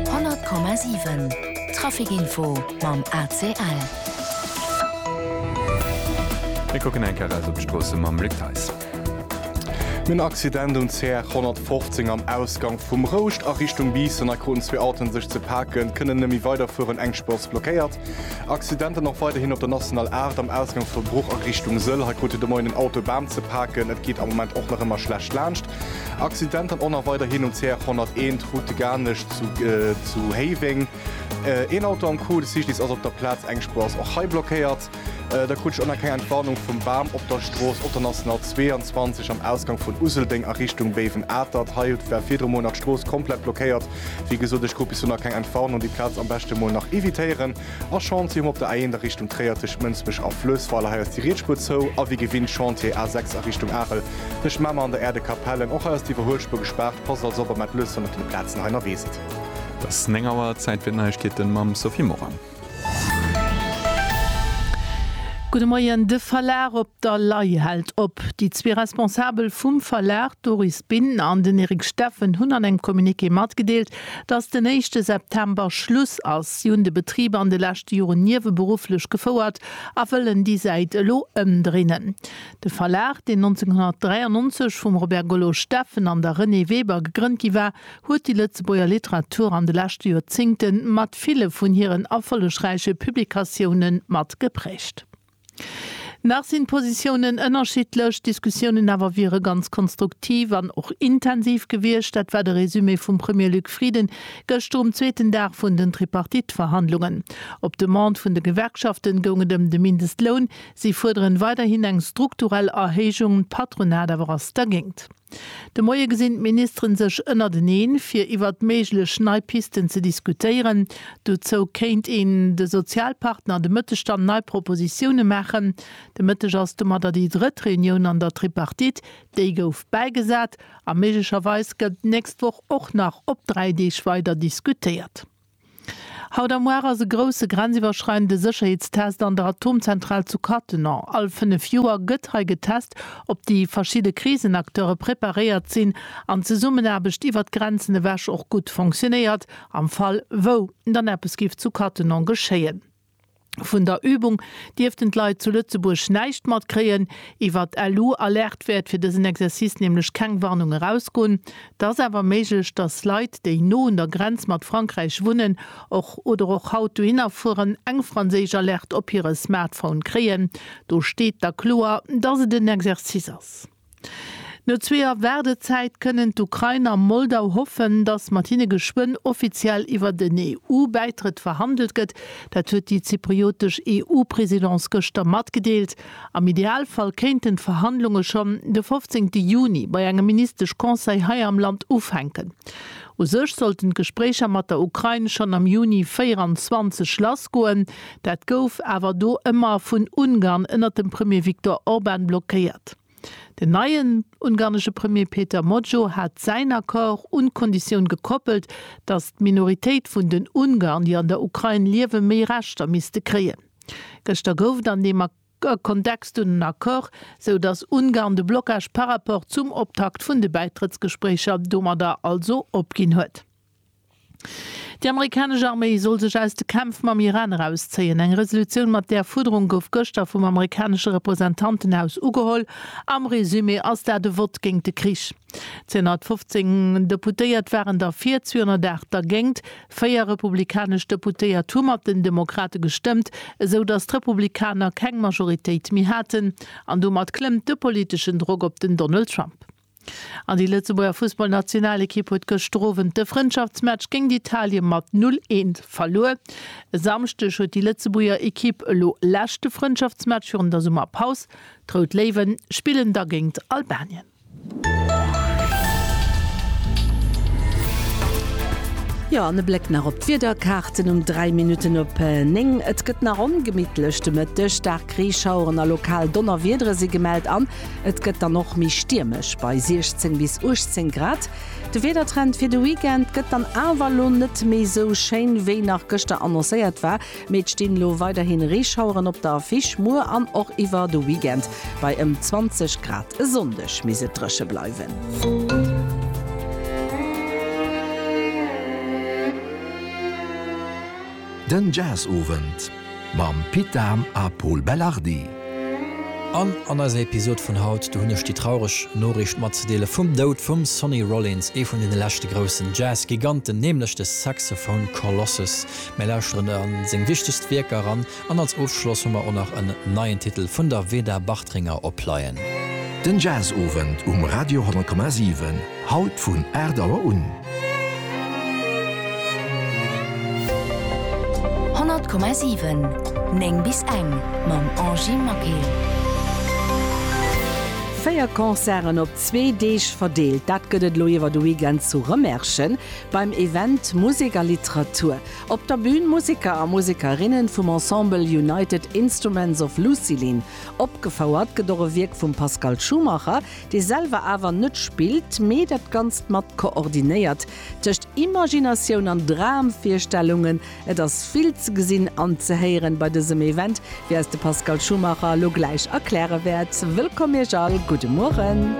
100,7 Trafic-Info mam ACL. Mir kucken eng Kéier raus op d'Stroosse mam Luc Theis. Nun Accident um CR 115 am Ausgang vum Rouscht a Richtung Biissen. Hei kruten zwee Autoen sech ze paken, kënnen net méi weiderfueren, eng Spur ass blockéiert. Accidenten och weiderhin op der National 8 am Ausgang vu Bruch a Richtung Sëll. Hei krut de Moien en Auto e Bam ze paken, et geet am Moment och nach ëmmer schlecht laanscht. Accident an Onner weiderhin um CR 101, Route de Garnech zu Héiweng. Een Auto am Coup, de Cyclist ass op der Plaz, eng Spuer ass och hei blockéiert. Da krut ech och nach keng Entwarnung vum Bam op der Strooss op der National 22 am Ausgang vun Useldeng a Richtung Béiwen-Atert. Hei war virdru mol nach d'Strooss komplett blockéiert. Wéi gesot, ech krut bis elo nach keng Entwarnung. Déi Plaz am beschte mol nach evitéieren. A Chantier um op der A1 a Richtung Tréier tëscht Mënsbech a Fluessweiler. Hei ass déi Rietspuer zou. A wéi gewinnt Chantier A6 a Richtung Arel tëscht Mamer an der Äerdekapellen. Och hei ass d'Iwwerhuelspuer gespaart. Passt also op a mellt lues, wann der vun de Plazen hei ënnerwee sidd. Et ass 9 Auer, Zäit fir d'Neiegkeeten mam Sophie Morang. Gudde Moien, De Verlag op der Lay hält op. Déi zwee Responsabel vum Verlag, d'Doris Binn an den Eric Steffen, hunn an engem Communiqué matgedeelt, Datt den éischte September Schluss ass, si hunn de Betrib an de leschte Joren nieweberufflech gefouert a wëllen déi Säit elo ëmdrinnen. De Verlag, deen 1993 vum Robert Gollo Steffen an der Renée Weber gegrënnt gi war, huet déi Lëtzebuerger Literatur an de leschte Joerzéngte mat ville vun hiren erfollegräiche Publikatioune mat geprägt. Nach sinn d'Positiounen ënnerschiddlech, d'Diskussiounen awer wiere ganz konstruktiv an och intensiv gewiescht. Dat war de Resumé vum Premier Luc Frieden gëschter um zweeten Dag vun den Tripartite-Verhandlungen. Op Demande vun de Gewerkschaften goung et ëm de Mindestloun. Si fuerderen weiderhin eng strukturell Erhéijung, d'Patronat awer ass dergéingt. De Moie gesinn d'Ministeren sech ënnerteneen, fir iwwert méiglech nei Pisten ze diskutéieren. Dozou kéint een de Sozialpartner an de Mëttestand nei Propositioune maachen. De Mëtteg ass domatter déi drëtt Reunioun an der Tripartite. Déi gouf bäigesat a méiglecherweis gëtt d'nächst Woch och nach op dräi Deeg weider diskutéiert. Haut a muar ass e grousse grenziwwerschreidende Sécherheetstest an der Atomzentral zu Cattenom. All 5 Joer gëtt hei getest, ob déi verschidde Krisenacteure preparéiert sinn an d'Zesummenaarbecht iwwer d'Grenzen ewech och gutt fonctionéiert, am Fall wou dann eppes giff zu Cattenom geschéien. Vun der Übung dierften d'Leit zu Lëtzebuerg näischt matkréien. Iwwer d'LU Alerte wäert fir dësen Exercice nämlech keng Warnung erausgoen. Et ass awer méiglech, dass Leit, déi no un der Grenz mat Frankräich wunnen och oder och haut dohinner fueren, eng franséisch Alerte op hire Smartphone kréien. Do steet da kloer, dass et en Exercice ass. No zwee Joer Waardezäit kënnen d'Ukrain a Moldau hoffen, datt mat hinne geschwënn offiziell iwwer den EU-Bäitrëtt verhandelt gëtt. Dat huet déi zypriotesch EU-Presidence gëschter matgedeelt. Am Idealfall kéinten d'Verhandlunge schonn de 15 Juni bei engem Ministesch-Conseil hei am Land ufänken. U sech sollten d'Gespréicher mat der Ukrain schonn am Juni 24 lassgoen, Dat gouf awer do ëmmer vun Ungarn ënnert dem Premier Viktor Orban blockéiert. Den neien ungarnesche Premier Péter Mojó hat säin Accord un d'Konditioun gekoppelt, datt d'Minoritéit vun den Ungarn, déi an der Ukrain liewen, méi Rechter misste kréien. Gëschter gouf et an deem Kontext dunn en Accord, sou datt Ungarn de Blocage par rapport zum Optakt vun de Bäitrëttsgespréicher domadder also opginn huet. Déi amerikanesch Arméi soll sech aus de Kämpf mam Iran erauszéien. Eng Resolutioun mat där Fuerderung gouf gëschter vum amerikanesche Representantenhaus ugeholl. Am Resumé ass dat e Vott géint de Krich. 215 Deputéiert waren derfir, 208 dergéint. Véier republikanesch Deputéiert hu mat den Demokrate gestëmmt, esou datt d'Republikaner keng Majoritéit méi haten. An domat klëmmt de politeschen Drock op den Donald Trump. An déi Lëtzebuerger Fussballnationalekipp huet gëschter Owend de Frëndschaftsmatch géint Italien mat 0, 1 verluer. E Samschdeg huet déi Lëtzebuerger Ekipp elo leschte Frëndschaftsmatch virun der Summerpaus. D'Rout Léiwe spillen da géint Albanien. Jo, an e Bléck nach op d'Wiederkaarten um 3 Minutten op 9. Et gëtt nach ongemittlech de Mëtteg. Staark Reeschaueren a lokal Donnerwiedere si gemellt an Et gëtt dann och méi stiermesch, bei 16 bis 18 Grad. De Wiedertrend fir de Weekend gëtt dann awer elo net méi sou schéin, wéi nach gëschter annoncéiert war, mee et stinn elo weiderhi Reeschaueren op der Affiche. Muer an och iwwer de Weekend bei ëm 20 Grad. E Sonndeg misst et dréche bleiwen. Den Jazz-Owend. Mam Pit Dahm a Pol Belardi. An an eiser Episod vun haut, do hunn ech déi traureg Noriicht matzedeele vum Doud vum Sonny Rollins, ee vun deene leschte groussen Jazz-Giganten, nämlech de Saxophone Colossus. Mir lauschteren a seng wichtegst Wierker eran an als Ofschloss hu mer och nach en neien Titel vun der Veda Bartringer opleien. Den Jazz-Owend um Radio 10,7. Haut vun 8 Auer un. 100,7 9 bis eng mam Angie Maquet. Véier Concerten op zwee Deeg verdeelt, dat gëtt et elo iwwer de Weekend zu Rëmerschen beim Event Musek a Literatur. Op der Bün Museker a Musekerinne vum Ensemble United Instruments of Lucilin. Opgefouert gëtt och e Wierk vum Pascal Schumacher, dee selwer awer net spillt, mee dat Ganzt mat koordinéiert, tëscht Imaginatioun an Dramvirstellungen. Et ass vill ze gesinn an ze héieren bei dësem Event, wéi eis de Pascal Schumacher elo gläich erkläre wäert. Wëllkomm Iech all, gudde Mueren.